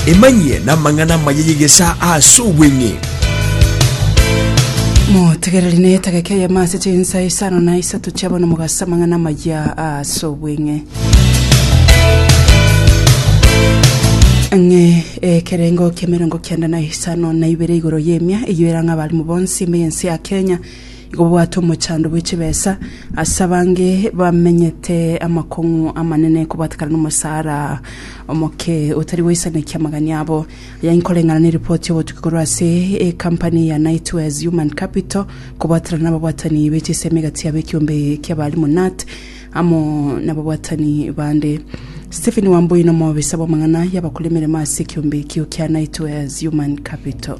Emanyie namang'ana amaya y'egesaa ase obweng'e. Motegereri na etageka eyemo ase chinsa isano na isato chia bono mogase amang'ana amaya ase obweng'e. Ng'e ekerengo kiemerongo kianda na isano na ibere igoro y'emia eyio erang'a abalimu bonsi ime y'ense ya Kenya Igo bwate omochando bwe chibesa ase abange bamenyete amakong'u amanene kobwatekana nomosara omoke otari goisanekia amagani abo. Aya inkoreng'ana ne ripoti y'obotuki korwa ase ekampani ya Nightwares Human Capital kobwaterana nababwatani be chisemi gati yabo ekiombe ki'abalimu nut amo nababwatani bande. Stephen Wambui nomobisa bw'amang'ana y'abakora emeremo ase ekiombe ekio kia Nightwares Human Capital.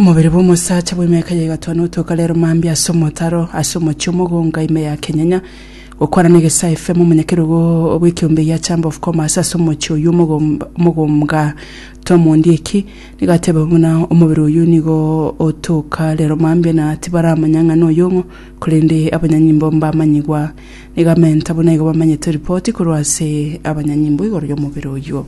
Omobere bw'omosacha bw'emiaka ya egatano otoka rero mambia ase omotaro ase omochie omogonga ime ya Kenyenya gokwana na egesae FM omonyakerogo bw'ekeombe gia Chamber of Commerce ase omochie oyio omogom- omogomga Tom Ondieki nigo atebe buna omobere oyio nigo otoka rero mambia na tibaramanya ng'a noyong'o korende abanyanyimbo mbamanyigwa nigo amenta buna igo bamanyete ripoti korwa ase abanyanyimbo igoro y'omobere oyio.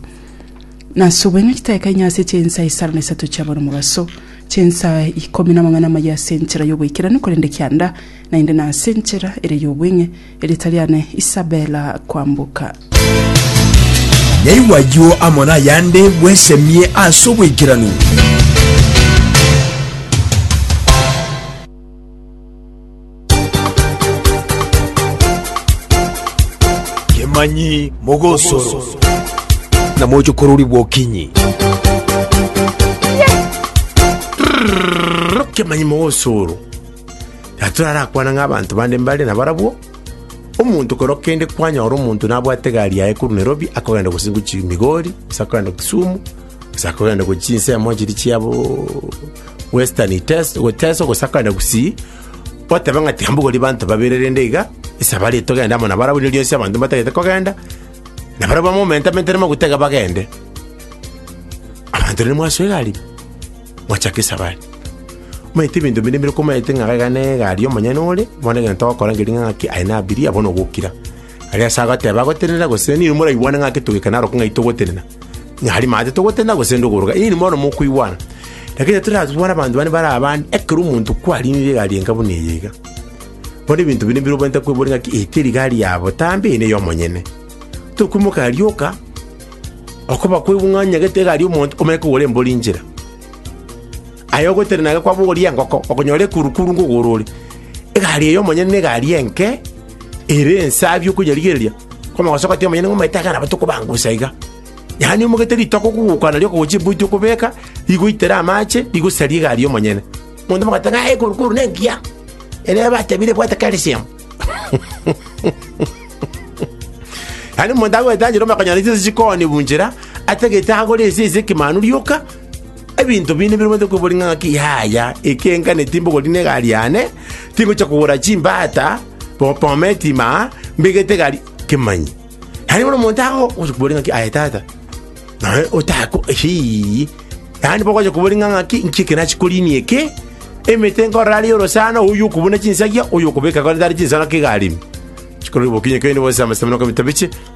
Nasubwe ng'a chitaeka inye ase chinsa isano na isato chiabo nomobaso, chinsa ikomi namang'ana amayia ase enchera y'oboikeranu, korende kianda naende nase enchera ere y'obweng'e, erieta riane Isabela Kwamboka. Yaigwa ayio amo nayande, bwesemie ase oboikeranu. Kemanyi mogosoro. Na moche kororigwa okinyi. Kemanyi mogosoro. Na turarakwana ng'a abanto bande mbare na barabwo. Omonto kero kende kwanyora omonto nabwate egari yaye korwa Nairobi akogenda gose gochi Migori, gose akogenda Kisumu, gose akogenda gochi chinsemo chiria chiabo Western Iteso, Teso gose akogenda gusii. Goteba ng'a tiambogorie banto babere rende iga, esabari togende amo nabarabwo, rirorio ase abanto mbatagete kogenda, na barabwo bamomentamentere amaguta iga bagende. Abanto rende mwasoa egari, mwachaka esabari. Omanyete ebinto binde bire komaete ng'a iga ne egari omonyene ore, bono egento ogokora ngering'ana ng'aki aye nabirie, abwo nogokira. Aria ase agoteeba agotenena gose, ninwe moraigwane ng'aki togikane arokwo ng'ai togotenena. Ng'ari maate togotenena gose inde okoroka, inwe bono mokoigwana. Lakini titorabe bono abanto bande bare abande, ekero omonto kwariinire egari enka buna eye iga. Bono ebinto binde mbire obwenerete kweboria ng'aki eye teri gari ya botambe, eye neye omonyene. Tokoimoka arioka, okoba kwaigwa ng'a onyagete egari y'omonto, omanye kogora embori inchera. Aye ogotenena iga kwabogoria engoko, okonyora ekurukuru ngogoro ore. Egari eye omonyene na egari enke. ere ensabi okonyarigereria, kw'amagoso gotiga monyene ng'a omanyete akana bato kobangusa iga. Yaani omogete ritoke okogokwa nario okogochia eboiti okobeka, rigoitere amache, rigosaria egari y'omonyene. Monto mogoteba ng'a ee ekoru koru nengiya, ere batebire ebwate calcium. Yaani omonto agoeta njera omonto akonyora chinsa chikoonia bunchera, atagete agore ense ase ekemanu rioka, Ebinto binde biromanyete kweboria ng'a ng'aki yaya, ekenga netimbe ogoria negari yane, tingochia kogora chimbata, bobome etima, mbegete egari, kemanyi. Yaani bono omonto ago ogochia koboria ng'aki aye tata, naye otako hii. Yaani bogochia koboria ng'a ng'aki nki eke nachi korinia eke, emete nkorora are orosana, oyio okobuna chinsagia, oyio okobeka kore tare chinsana kegari ime. Chikoro rigokinya kende gose amasemero kobita biche,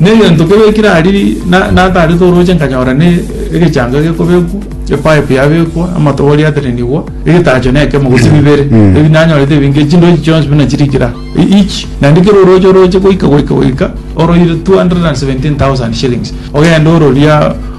Negento kebe kirariri natarete orooche nkanyora ne egechango gekobekwa, epipe yabekwa, amatobori aterenigwa, egetacho nekemo gose bibere. Ebi nanyorete ebinge chindochi chionsi buna chirikire aa. Each naende kera orooche orooche goika goika goika oroire 217,000 shillings. Ogende ororia